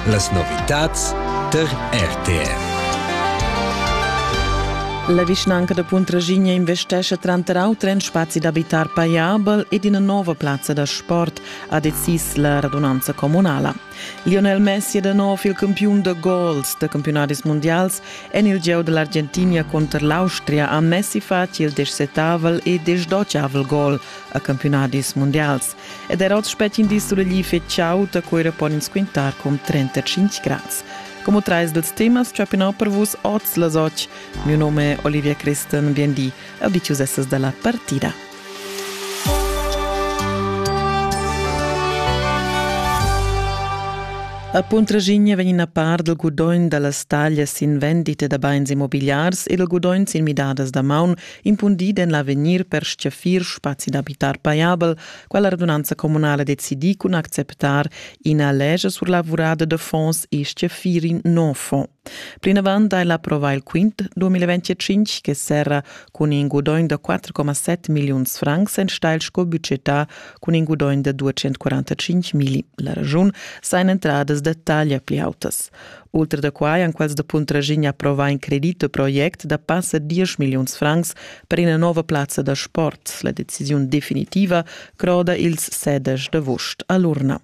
Las novitads tar RTR. La vischnanca da Puntraschigna investescha tranter auter en spazi d'abitar paiabel ed ina nova plazza da sport, ha decis la radunanza communala. Lionel Messi è da nov il campiun da gols da campionadis mondials en il gieu da l'Argentina conter l'Austria ha Messi fatg il descetavel e desdotgavel gol a campionadis mondials. ed er oz spetg in di sulegl fitg chaud, da quera pon ins quintar cun 35 grads. Como trais dels temas chapinò per vus oz las och. Mio nome è Olivia Christen, vien di, e dicius essas dalla partida. A Puntragigne vegn a par del gudogn dallas taglias in vendite da bains immobiliars e del gudogn sin midadas da maun impundid en l'avegnir per stgaffir spazi d'abitar pajabel, quella radunanza communala decidi cun acceptar ina lege sur lavurada de fonds e stgaffir in nov fonds. Plinavant ha ella approvà il quint 2025 che serra cun in gudogn da 4,7 milliuns francs enstagl sco budgetà cun in gudogn da 245 mil. La ragiun sain entradas da taglia pli autas. Ultra da quai han quels da Puntraschigna approvà in credit u project da passa 10 milliuns francs per ina nova plazza da sport. La decisiun definitiva croda ils sedesch d'avust a l'urna.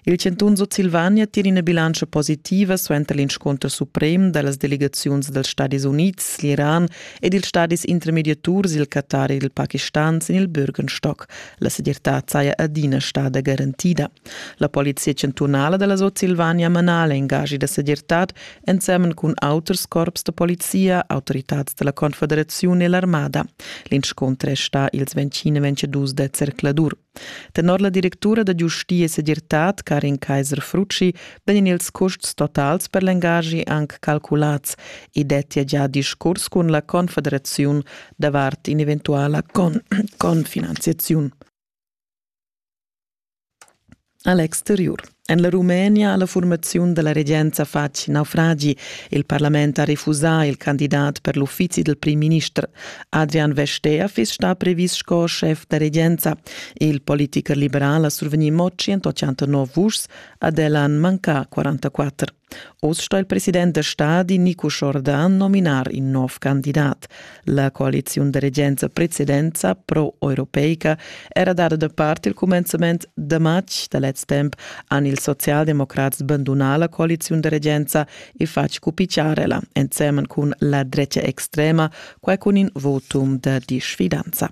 Il chantun Sutsilvania tira ina bilantscha positiva suenter l'inscunter suprem da las delegaziuns dals Stadis Unids, l'Iran ed ils stadis intermediaturs, il Qatar e il Pakistan sin il Bürgenstock. La segirtad saja adina stada garantida. La polizia chantunala dalla Sutsilvania mana l'engaschi da segirtad ensemen cun auters corps da polizia, autoritads dalla Confederaziun e l'armada. L'inscunter è sta ils 20-22 da zercladur. Tenor la directura da giustia e segirtad Karin Kaiser-Frucci vegn ils custs totals per l'engaschi anc calculats e dettia già discurs cun la Confederaziun davart in'eventuala con confinanziaziun. A l'exteriur en la Rumenia ha la furmaziun da la regenza fatg naufragi. Il parlament ha refusà il candidat per l'uffizi dal primminister. Adrian Vestea fiss stà previs sco schef da regenza. Il politicher liberal ha survegnì mo 189 vuschs, ad el han mancà 44. Oz sto il president da stadi Nico Jordan nominar in nov candidat. La coaliziun da regenza precedenza pro-europeica era dada da part il cumenzament da matg da lez temp han ils socialdemocrats bandunà la coaliziun da regenza e fatg cupiciarela, ensemen cun la drecha extrema, quai cun in votum da disfidanza.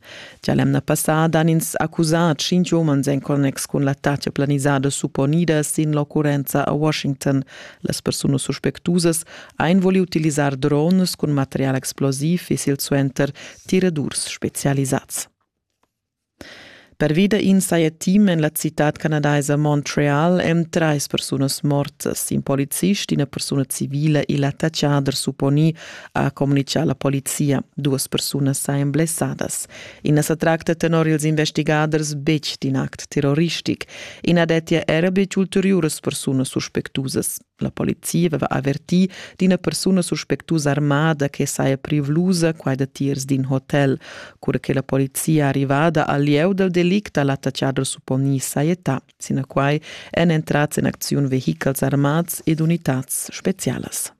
Gia l'emna passada han ins accusà tschintg umans en connex cun l'attacca planisada supponida sin l'occurrenza a Washington. Las persunas suspectusas ein voli utilisar drones cun material explosiv e silsuenter tiradurs specialisads. Pervi da in saja team en la citad canadaisa Montreal èn trais persunas mortas. In polizist, ina persuna civila e l'attaccader supponì ha communitgà la polizia. Duas persunas sajan blessadas. I na sa tracta tenor ils investigaders betg d'in act terroristic. I na dettia era betg ulteriuras persunas suspectusas. La polizia aveva avertì d'ina persuna suspectusa armada che saja privlusa quai datiers d'in hotel. Cura che la polizia arrivada al lieu dal delict ha l'attaccader supponì sajetà. Sinaquai èn entrads en acziun vehichels armads ed unitads spezialas.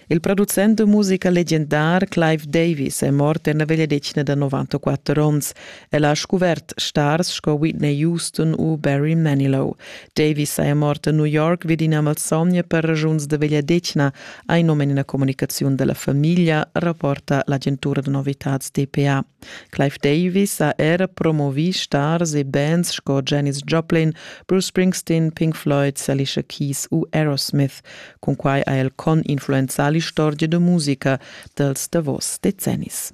Il producent da musica legendar Clive Davis è mort en la vegliadetgna da 94 onns. El ha scuvert stars sco Whitney Houston u Barry Manilow. Davis è mort a New York vid ina malsogna per ragiuns da vegliadetgna, ha in num en ina comunicaziun dalla famiglia, rapporta l'agentura da novitads DPA. Clive Davis ha era promovì stars e bands sco Janis Joplin, Bruce Springsteen, Pink Floyd, Alicia Keys u Aerosmith. Cunquai ha el con influenzà l'istorgia da musica dels davos decennis.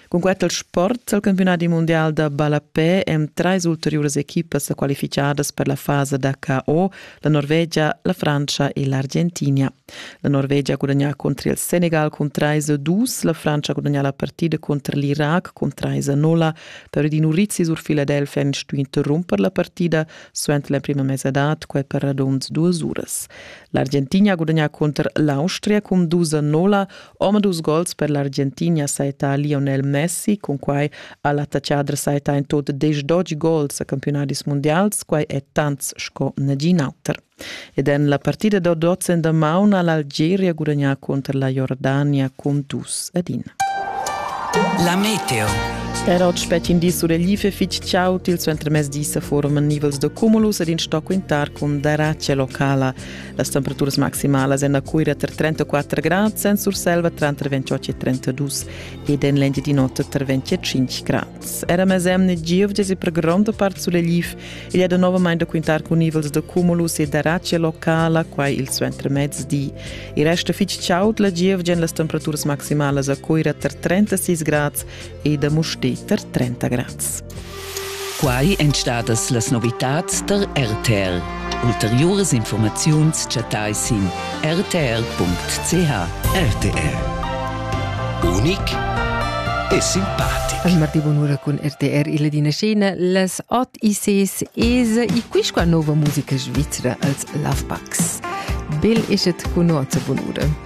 Con quel sport al campionati mondial da ballapè èn trais ulteriuras equipas qualificadas per la fasa da KO, la Norvegia, la Francia e l'Argentina. La Norvegia gudagnà contro il Senegal cun 3-2, la Francia gudagnà la partida contro l'Iraq cun 3-0. Per Edino Rizzi sur Philadelphia ha stuì interromper la partida suenter la prima mesadad quai per radund duas uras. L'Argentina ha gudagnà cunter l'Austria cun dus a nolla, omadus gols per l'Argentina saita Lionel Messi, cun quai ha l'attacchadra saita in tot 10 gols a campionadis mundials, quai è tants sco nagin auter. ed en la partida da dots en damaun ha l'Algeria gudagnà cunter la Jordania cun dus ed in. La meteo. Er oggi spettin di sur l'IFE fitg ciaut il suentermezdi sa forum nivels de cumulus ed in sto quintar cun darace locala. Las temperaturas maximalas en la Cuira tra 34 grad, sen Surselva tra 28 e 32 ed en l'Engiadinota tra 25 grad. era mes emne giuvdes e per gronda part suleliv. Il è novamente da quintar con nivels de cumulus e d'aracia locala, quai il suenter mezdi. Il resto fitch chaud la giovgia en las temperaturas maximalas a Coira ter 36 grads e da Musti ter 30 grads. Quai en stadas las novitads der RTL. Ulteriuras infurmaziuns chattais sin rtr.ch. RTR. Unic e simpatic. Al Marti Bonura cun RTR illa dina scena las Ot ICs ESA e quisqua nova musica svizra als Lovebacks. Bel eschet cun nossa Bonura.